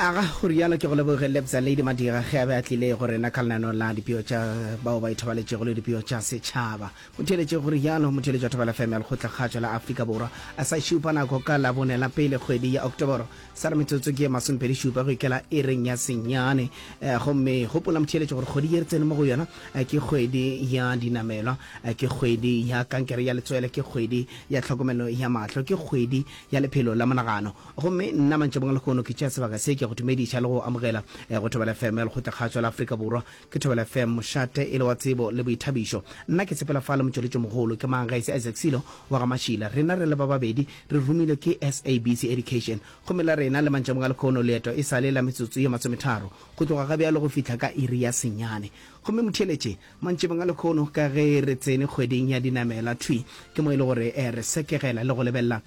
aga go rialo ke go leboge lebza lady madira ge a be a tlile go rena ka lenano la dipeo tša bao ba ithobaletšego le dipeo tša setšhaba motheeletše go rialo motheeletši wa thobela fm ya lekgotlakgatšo la afrika borwa a sa šupa nako ka labone la pele kgwedi ya oktoboro sa re metsotso ke ye masomepedi šupa go ikela e reng ya senyane eh, gomme gopola motheeletše gore kgwedi ye re tsene mo go yona eh, ke kgwedi ya dinamelwa eh, ke kgwedi ya kankere ya letswele ke kgwedi ya tlhokomelo ya mahlo ke kgwedi ya lephelo la monagano. Gomme nna, mantšabong a lehono, ke tšea sebaka se, ke a go dumediša le go go amogela go Thobela FM ya Lekgotlakgašo la Afrika Borwa. Ke Thobela FM, mošate e le wa tsebo le boithabišo. Nna ke sepela fa le Motšweletšomogolo. Ke mang ge e se Isaac Silo wa ga Mashila? Rena re le ba babedi re romilwe ke SABC Education. Gomme la rena le, mantšabong a lehono, leeto e sa le la metsotso ye masometharo go tloga ga bjalo go fihla ka iri ya senyane. Gomme motheeletše Mantšebeng a lekhono, ka ge re tsene kgweding ya dinamela, thwi ke mo e le gore re sekegela le go lebelela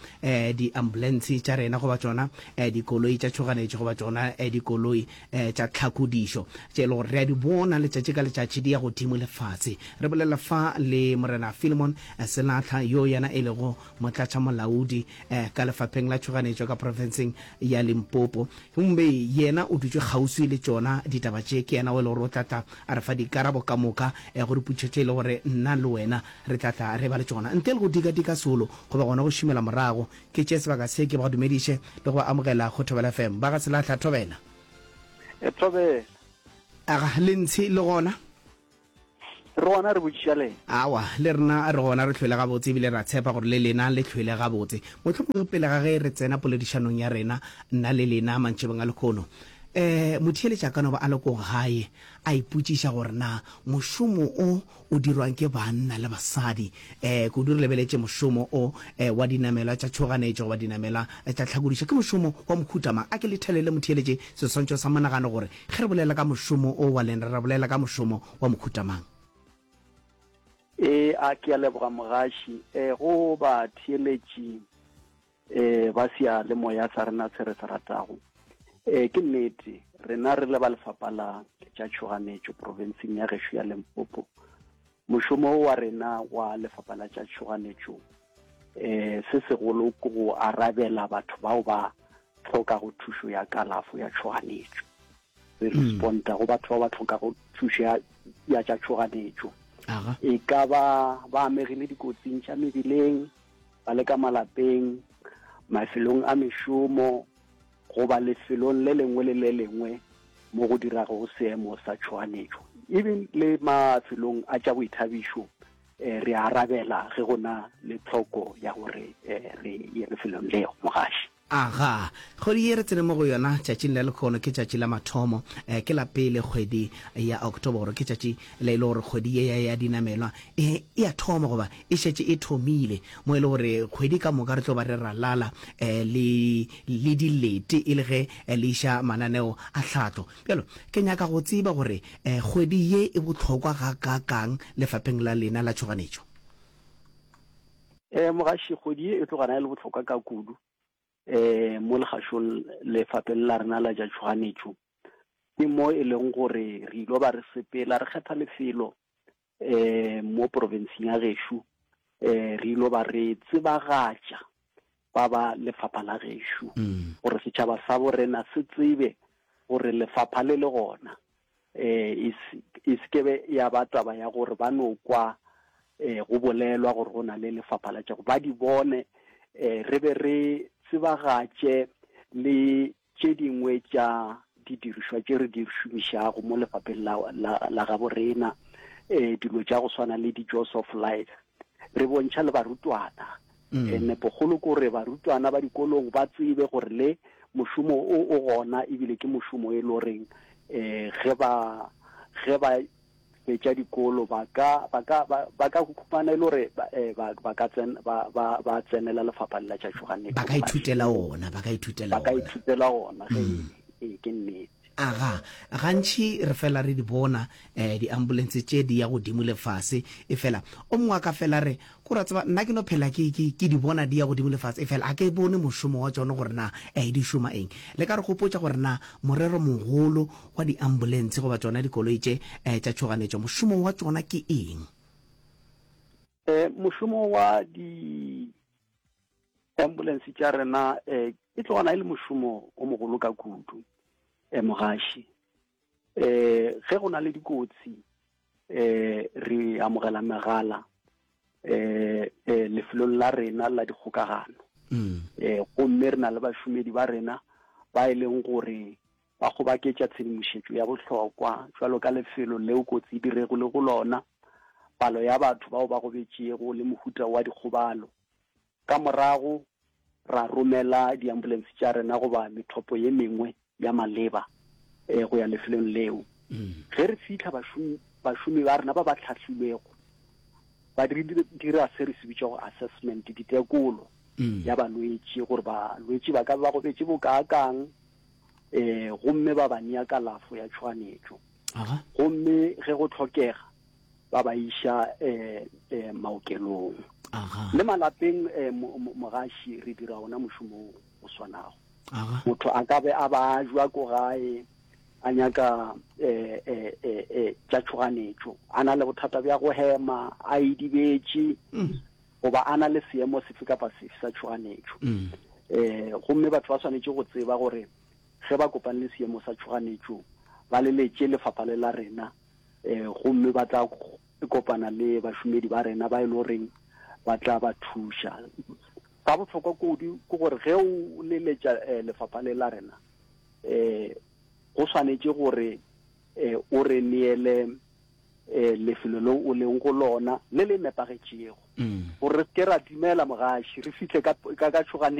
diambulentshe tša rena goba tšona dikoloi tša tšhoganetšo goba tšona dikoloi tša tlhakodišo tše e le gore re a di bona letšatši ka letšatši di ya godimo le fase. Re bolela fa le Morena Philemon Selatlha yo yena e lego Motlatšamolaodi ka Lefapheng la Tšhoganetšo ka Profenseng ya Limpopo. Gomme Yena o dutše kgauswi le tšona ditaba tše. Ke Yena o e le gore o tla tla a re fa dikarabo ka moka go dipotšišo tše e le gore nna le wena re tla tla re eba le tšona. Ntle le go dikadika solo, goba gona go šomela morago, ke tšee sebaka se ke ba dumediše le go ba amogela go Thobela FM. Ba ga Selahla, Thobela! Thobela! Aga, le ntshe le gona? Re gona re botšiša le. Awa, le rena re gona re hlwele gabotse ebile re a tshepa gore le lena le hlwele gabotse. Mohlomongwe pele ga ge re tsena poledišanong ya rena, nna le lena, mantšebeng a lekhono, um motheeletši a ka no ba a le ko gae a ipotšiša gore na mošomo o o dirwang ke banna le basadi, um kudu re lebeletše mošomo o um wa dinamelwa tša tšhoganetšo goba dinamelwa tša tlhakodišo, ke mošomo wa mohuta mang? A ke lethelele motheeletši seswantšho sa monagano gore Ge re bolela ka mošomo o wa lena, re bolela ka mošomo wa mohuta mang? Eya, ke a leboga mogaši. Go batheeletši ba seyalemoya sa rena se re se ratago, ke nnete rena re le ba Lefapha la tša Tšhoganetšo profenseng ya gešo ya Limpopo, Mošomo wa rena wa Lefapha la tša Tšhoganetšo se segolo ke go arabela batho bao ba tlhokago thušo ya kalafo ya tšhoganetšo. Re hmm. responda go batho ba ba tlhokago thušo ya ya tša tšhoganetšo. E ka ba ba amegile dikotsing tša mebileng, ba le ka malapeng, mafelong a mešomo, goba lefelong le lengwe le le lengwe mo go dirago seemo sa tšhoganetšo even le mafelong a tša boithabišo eh, re arabela ge go na le tlhoko ya gore eh, re ye lefelong leo mogaši aga kgwedi ye re tsene mo go yona tšatšing la lekgono ke tšatši la mathomo eh, ke la pele kgwedi ya oktoboro ke tšatši le e le gore kgwedi ye ya, ya dinamelwa e e ya thoma goba e šetše e thomile mo e le gore kgwedi ka moka re tlo ba re ralala eh, le le dilete e le ge le iša mananeo a tlhahlo. Bjalo, ke nyaka go tseba gore kgwedi ye e bohlokwa gakaakang lefapheng la lena la tšhoganetšo. Mogaši, kgwedi ye e tlo gana e le bohlokwa ka kudu mo legašong lefapheng la rena la tša tšhoganetšo. Ke mo e leng gore re ilo ba re sepela, re kgetha lefelo um mo porofenseng ya gešo um re ilo ba re tsebagatša ba ba lefapha la gešo mm. gore setšhaba sa borena se tsebe gore lefapha le le gona um e sekebe ya ba taba ya gore ba no kwa um go bolelwa gore go na le lefapha la tšago ba di bone um re be re tsebagatše le Tše dingwe tša didirišwa tše re di šomišago mo lefapheng la, la, la gabo rena, e, dilo tša go swana le di-jaws of life, re bontšha le barutwana. Mm. E, nepogolo ke gore barutwana ba dikolong ba tsebe gore le mošomo o o gona ebile ke mošomo e le goreng um ge ba ge ba fetša dikolo ba ka ba ka ba, ba ka khumana e le gore ba, eh, ba, ba ka tsen, ba, ba, ba tsenela lefapha la tša Johanne ba ka ithutela ona ba ka ithutela ba ka ona ithutela ona ge mm. ee ke nnete aga gantšhi re fela re di bona um di-ambulance tše di ya godimo le fase e fela o mongwe a ka fela re Ke ra tseba nna ke no phela ke, ke, ke di bona di ya godimo le fase, efela ga ke bone mošomo wa tšona gore na e, di šoma eng. Le ka re gopotša gore na morero mogolo wa diambulentshe goba tšona dikoloi tše e, tša tšhoganetšo mošomo wa tšona ke eng? E, mošomo wa diambulentshe tša rena e, e tloga na e le mošomo o mogolo ka kudu, e, mogaši. eh ge go na le dikotsi eh re amogela megala eh, eh lefelong la rena la dikgokagano mm. eh gomme re na le bašomedi ba rena ba e leng gore ba kgobaketša tshedimošetšo ya bohlokwa jwalo ka lefelo leo kotsi e dirego le go lona palo ya batho bao ba gobetšego le mohuta wa dikgobalo Ka morago ra romela diambulense tša rena goba methopo ye mengwe ya maleba go ya lefelong leo. Ge re fihla, bašomi, bašomi ba rena ba ba hlahlilwego ba dira se re se bitšago assessment, ditekolo ya balwetši, gore balwetši ba ka ba gobetše bokaakang, um gomme ba ba nea kalafo ya tšhoganetšo. Gomme ge go hlokega, ba ba iša um maokelong le malapeng um mogaši re dira ona mošomo o swanago motho a ka be a ba jwa ko gae a nyaka um tša tšhoganetšo a na le bothata bja go hema a idibetše mm. goba a na le seemo sefe kapa sefe sa tšhoganetšo um gomme batho ba swanetše go tseba gore ge ba kopane le seemo sa tšhoganetšo ba leletše lefapha le la rena e, gomme ba tla kopana le bašomedi ba rena ba e le goreng ba tla ba thuša sa bohlokwa kudu ke gore ge o leletša eh, lefapha le la rena eh go swanetše gore eh o re neele eh lefelo le o leng go lona le le nepagetšego mm. gore re se ke ra dumela mogaši re fihle ka ka tšhoganeng